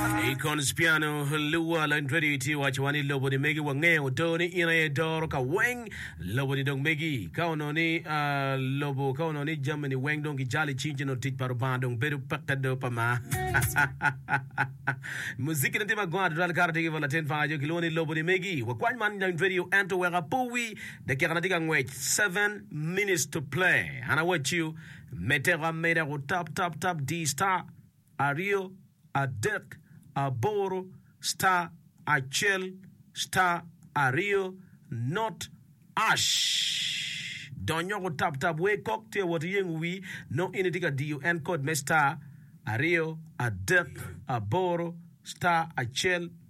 I Conspiano, luwa Landretti tye wacowa ni lobo ni megi wangeyo do ni in aye doro ka weng lobo ni dong megi ka onongo ni lobo ka onongo ni jami ni weng dong gijalo icing ci nongo tic pa Rubanga dong bedo peke do pa ma muziki ne tye ma gongo adada lkato tye ki bot latin panga jo kilwongo ni lobo ni megi wakwany man Landretti o ento wek apowi dakika na tye ka ngwec 7 minutes to play an awaciyo me teko ameda ku tap tap tap di star aryo adek aboro star acel star aryo not ash donyo ku tap tap wer kok tye awot iyengo wi nongo in itye ka diyo en kod me star aryo adek aboro star acel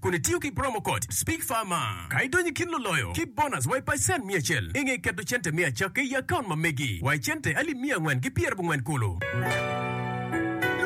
kun itiyo ki promo code SPEAKFARMER ka idonyo i kin luloyo ki bonus wa i pacen miya acel. I nge keto cente me acakki i akaunt ma megi wa i cente alip miya angwen ki pyera bungwen kulu.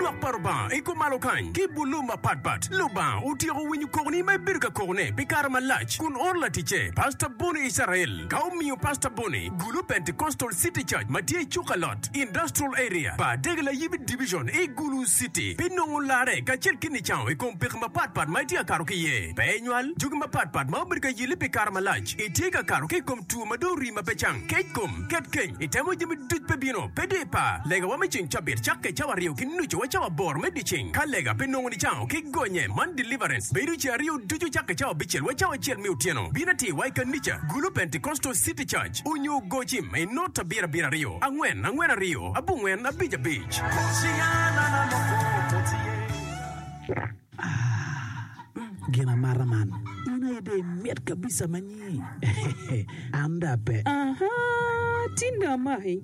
Lwak pa Lubanga i kom malo kany ki bulu mapat pat. Lubanga otyeko winyo kokoni ma ibedo ka kokone pi kare malac kun oro laticce Pastor Bonnie Israel ka omiyo Pastor Bonnie gulu Pentecostal City Church ma tye i Cukalot. West Industrial Area pa Degelayibi Division i Gulu City pi nongo larre kacel ki nicango i kom peko mapatpat ma itye ka kato ki iye. Pe inywal jogi mapatpat ma obedo ka yelli pi kare malac. Itye ka kato ki i kom two ma dong orii ma pe cang, kec kom, ket keny, itemo jami duc pe bino, pe di pa. Legawa me ceng cabit cakke cawa aryo ki nucu wa cawa aboro me dyeceng. Ka lega pe nongo nicango ki gonye man deliverance bedo ceng aryo ducu cakke cawa abicel wa cawa acel me otyeno. Bin atir wa i kanica Gulu Pentecostal City Church. abic, onyo goci ma inot abiro abiro aryo, angwen angwen aryo, abongwen abic abic. Gin amata man in aye dong imit kabisa manyi. An dong ape. Aha! Tinda amaki.